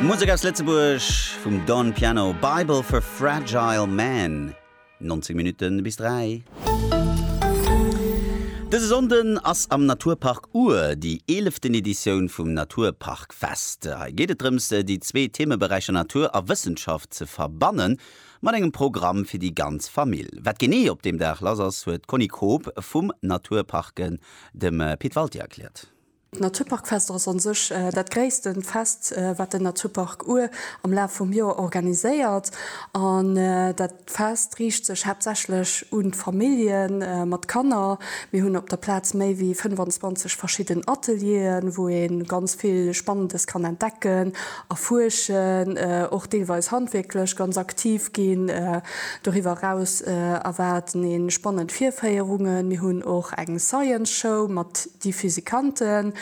Musek aus Lëtzebuerg vum Don Piano, Bible for Fragile Man, 19 Minutten bis 3. Dëse Sonnden ass am Naturpark Our déi eeleften Editioun vum Naturparkfest. Hei geet et drëms, déi zwee Themeberäicher Natur a Wëssenschaft ze verbanne mat engem Programm fir déi ganz Famill. Wat genee op deem Dag lass ass, huet d'Conny Koob vum Naturparken dem Pit Walté erkläert. D'Naturparkfester ass an sech dat gréisste Fest wat den Naturpark Our am Laf vum Joer organiséiert. An dat Fest riicht sech haaptsächlech un d'Famillje mat Kanner. Mir hunn op der Plaz méi wéi 25 verschidden Atelieren, wou ee ganz vill Spannendes kann entdecken, erfuerschen, och deelweis handwierklech ganz aktiv ginn. Doriwwer eraus erwaarden ee spannend Virféierungen. Mir hunn och eng Science Show mat déi Physikanten.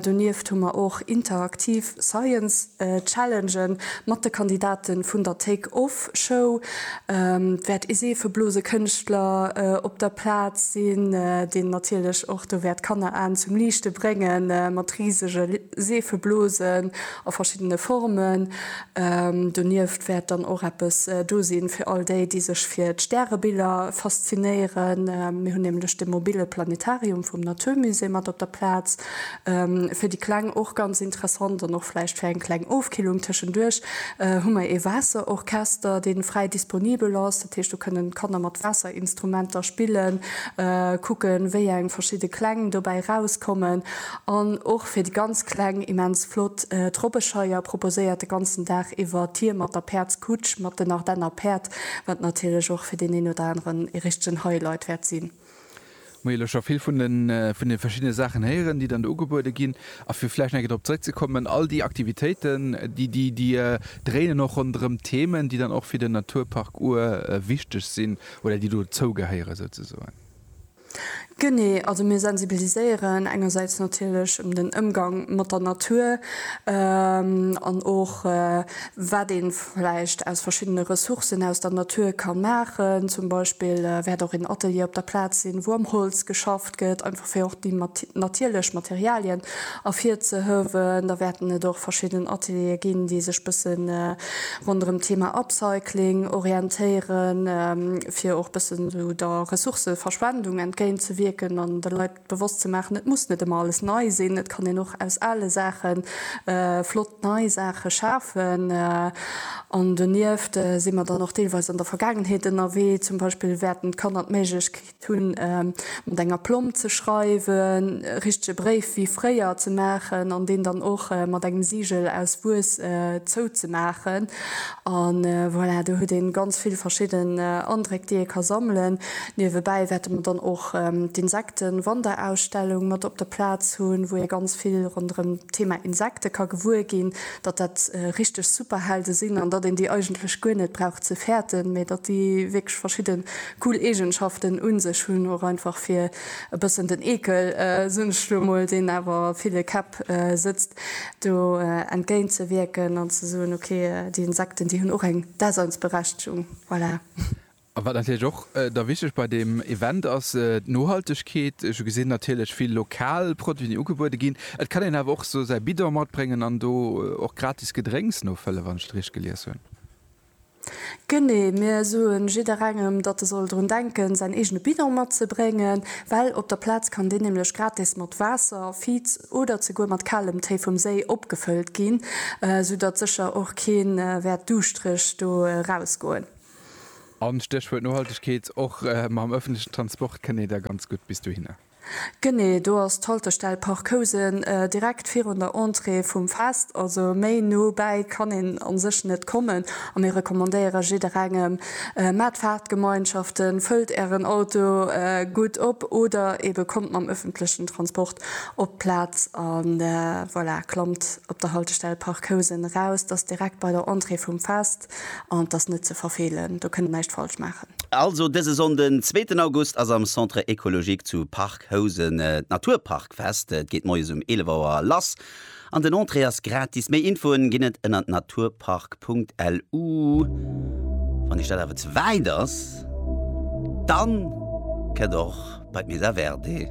Donieft hu mer och interaktiv Science Challenge mat de Kandidate vun der Take Off Show. Et wäert ee Seefeblosekënschtler op der Plaz sinn, deen natierlech och do wäert d'Kanneraen zum Liichte bréngen mat risege Seefeblosen a verschiddene Formen. Donieft wäert dann och eppes do sinn fir all déi, déi sech fir d'Stärebiller faszinéieren. Mir hunn nämlech de mobile Planetarium vum Natur Musée mat op der Plaz. Fir déi Kleng och ganz interessant an och vläicht fir eng kleng Ofkillung tëschenduerch hu mer ee Waasserorchester, dee fräi disponibel ass. Dat heescht do kënnen d'Kanner mat Waasserinstrumenter spillen, kucken wéi eng verschidde Kläng dobäi erauskommen. An och fir déi ganz Kleng immens flott. D'Robbescheier proposéiert de ganzen Dag iwwer Tier mat der Päerdskutsch, mat den Ardenner Päerd, wat natierlech och fir deen een oder aneren ee richtegen Highlight wäert sinn. Hu jo elo scho vill vun de verschiddene Saachen héieren, déi dann do ugebuede ginn. A fir vläicht nach eng Kéier drop zeréckzekommen, all déi Aktivitéiten, déi dréinen och ronderëm Themen, déi dann och fir den Naturpark Our wichteg sinn oder déi dozougehéieren souzesoen. Genee, also mir sensibiliséieren engersäits natierlech ëm den Ëmgang mat der Natur an och wat ee vläicht aus verschiddene Ressourcen aus der Natur ka maachen. Zum Beispill wäert och een Atelier op der Plaz sinn, wou am Holz geschafft gëtt, einfach fir och déi natierlech Materialien ervirzehëwen. Da wäerten et och verschidden Ateliere ginn, déi sech bësse ronderëm d'Thema Upcycling orientéieren, fir och bësse sou der Ressourcëverschwendung entgéint ze wierken an de Leit bewosst ze maachen, et muss net ëmmer alles nei sinn, et kann een och aus ale Saache flott nei Saache schafen. An donieft si mer dann och deelweis an der Vergaangenheet ënnerwee, zum Beispill wäerten d'Kanner d'Méiglechkeet hunn mat enger Plomb ze schreiwen, e richtege Bréif wéi fréier ze maachen an deen dann och mat engem Sigel aus Wuess zouzemaachen. An voilà, do huet ee ganz vill verschidden Andréck, déi ee ka sammelen. Niewebäi wäerte mer dann och d'Insektenwanderausstellung mat op der Plaz hunn, wou ee ganz vill ronderëm d'Thema Insekte ka gewuer ginn, datt dat richteg Superhelde sinn an datt een déi eigentlech guer net brauch ze fäerten, mee datt déi wierklech verschidde Cool Eegenschaften un sech. Hunn och einfach fir e bëssen den Eekel, soen ech elo emol, deen awer a ville Käpp sëtzt, do entgéint ze wierken an ze soen, ok, déi Insekten, déi hunn och eng Daseinsberechtegung. Voilà. A wat natierlech och da wichteg bei deem Event ass, d'Nohaltegkeet. Ech hu gesinn, natierlech vill lokal Produiten, déi ugebuede ginn. Et kann een awer och esou säi Bidon matbréngen an do och gratis Gedrénks nofëlle, wann ech et richteg gelies hunn. Genee, mir soen jidderengem, datt e soll drun denken, säin eegene Bidon matzebréngen, well op der Plaz kann deen nämlech gratis mat Waasser, Viz oder zeguer mat kalem Téi vum Séi opgefëllt ginn, sou datt sécher och keen wäert duuschtreg do erausgoen. An, Stéchwuert Nohaltegkeet, och mam ëffentlechen Transport kënnt ee da ganz gutt bis dohinner. Genee, do ass d'Haltestell Park Housen, direkt virun der Entrée vum Fest. Also méi no bäi kann een a sech net kommen a mir recommandéiere jidderengem, Maacht Fahrtgemeinschaften, fëllt ären Auto gutt op oder eebe kommt mam öffentlechen Transport op d'Plaz a voilà, klammt op der Haltestell Park Housen eraus. Dat ass direkt bei der Entrée vum Fest. an t'ass net ze verfeelen, do kënnt een näischt falsch maachen. Also dëse Sonnde zweeten August ass am Centre Ecologique zu Parc Housen d'Naturparkfest. Et geet moies um 11 Auer lass an den Entrée ass gratis. Méi Infoen ginn et ënner naturpark.lu. Wann Iech dat awer ze wäit ass, dann kënnt och bei d'Mesa Verde.